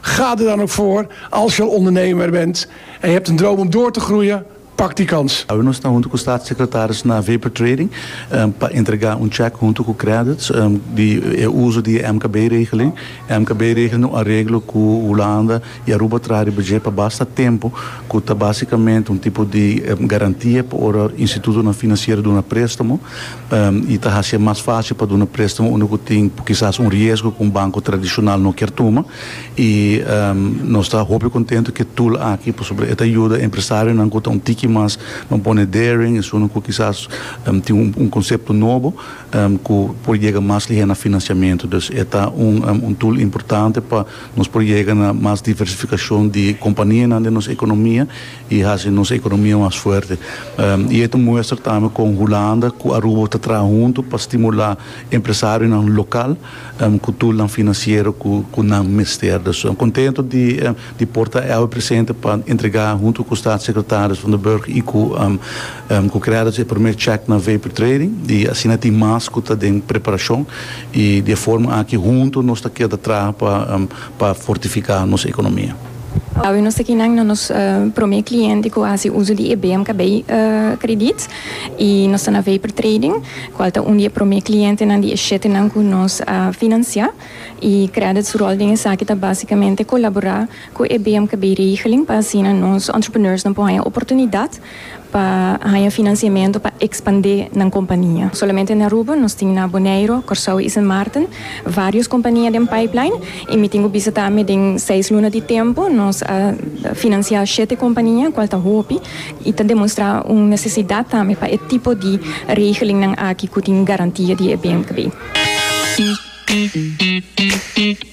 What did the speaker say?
Ga er dan ook voor, als je al ondernemer bent en je hebt een droom om door te groeien, pak die kans. Awe nos ta hunto cu Staatssecretaris na Vapor Trading pa entrega un check hunto cu credits di e uzo di e MKB regeling. E MKB regeling ta un areglo cu Hulanda y Aruba traha riba dje pa basta tempo cu ta basicamente un tipo di garantia pa ora institutonan financiero duna prestamo. I ta hacié mas fácil pa duna préstamo unda cu tin kisas un riesgo cu un banco tradicional no kier tuma. I nos ta hopi contento cu e tool aki pasobra e ta yuda empresarionan cu ta un tiki mas, nan pone daring, esunnan cu kisas tin un concepto nobo cu por yega mas lihé na financiamento. Dus e ta un tool importante pa nos por yega na mas diversificacion di companianan den nos economia y haci nos economia mas fuerte. Y e ta muestra tambe con Hulanda cu Aruba ta traha hunto pa stimula empresarionan local cu tulnan financiero cu nan mester. Dus nos contento di por ta awe presente pa entrega hunto cu Staatssecretaris Van den Burg y cu cu Credits e primer check na Vapor Trading y asina tin mas cu ta den preparacion y di e forma aki hunto nos ta keda traha pa fortifica nos economia. Awe nos ta kinan na nos prome kliente ku a hasi uso di e BMKB kredit i nos ta na Vapor Trading kual ta un di e prome klientenan di e shetenan ku nos a finansiá i kredit su ròl den esaki ta básikamente kolaborá ku e BMKB regeling pa asina nos entrepreneursnan por haña oportunidat pa haña finansiamentu pa ekspandé nan kompania. Solamente na Aruba nos tin na Boneiro, Kòrsou i Sint Maarten vários kompania den pipeline i mi tin ku bisa ta mi den seis luna di tempu nos a finansiá shete kompania kual ta hopi i ta demonstrá un nesesidat tambe pa e tipo di regelingnan aki ku tin garantia di e bmkb.